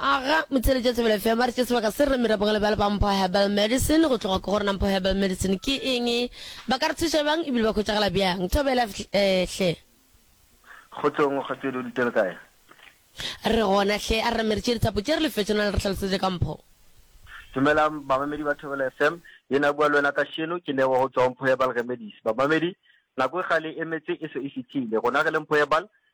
Aga motšhele tša Thobela FM a re tše sebaka se re mira bogale bjale ba Mpho Herbal Medicine go tloga ke gore na Mpho Herbal Medicine ke eng ba ka re thuša bjang ebile ba khwetšagala bjang Thobela eh, hle Kgotsong kgotsedi o dutše le kae? Re gona hle a re re meritše dithapo tše re lefetše na le re hlalosetše ka Mpho. Dumelang bamamedi ba Thobela FM, yena a bua le wena kasheno ke Lebo go tšwa go Mpho Herbal Remedies. Bamamedi, nako e kgale e emetse e se e fihlile, rona re le Mpho Herbal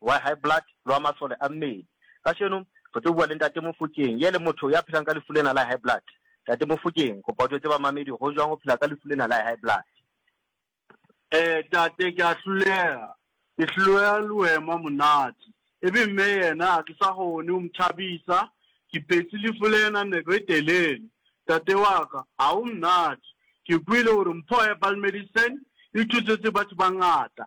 wa high blood le wa masole a mmele. Kašeno re tlo bua le Ntate Mofokeng, ye le motho ya phelang ka lefu lena la high blood. Ntate Mofokeng, kopa o tšwetse bamamedi go jwang go phela ka lefu lena la high blood. Ee tate, ke a hlolega, ke hlolega le wema monate. E be mme yena a ke sa kgone go mthabisa, ke phetse lefu lena nako e telele. Tate wa ka, ga go mnate. Ke kwele gore mpho ya Balmedicine e thusetse batho ba ngata,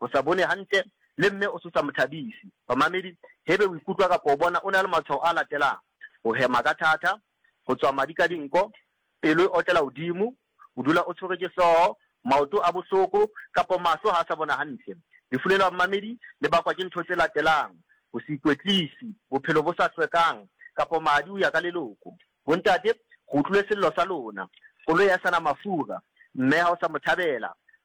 Go sa bone gantle le mme o se sa mo thabise. Bamamedi, hebe o ikutlwa kapa o bona o na le matshwao a latelang, go hema ka thata, go tswa madi ka dinko, pelo e otlela godimo, o dula o tshwerwe ke hlogo, maoto a bohloko kapa mahlo ga a sa bona gantle. Lefu le la bamamedi le bakwa ke ntho tse latelang, go se ikwetlisi, bophelo bo sa hlwekang kapa madi o ya ka leloko. Bontate, go utlwile sello sa lona. Koloi ha e sa na mafura. Mme ha o sa mo thabela.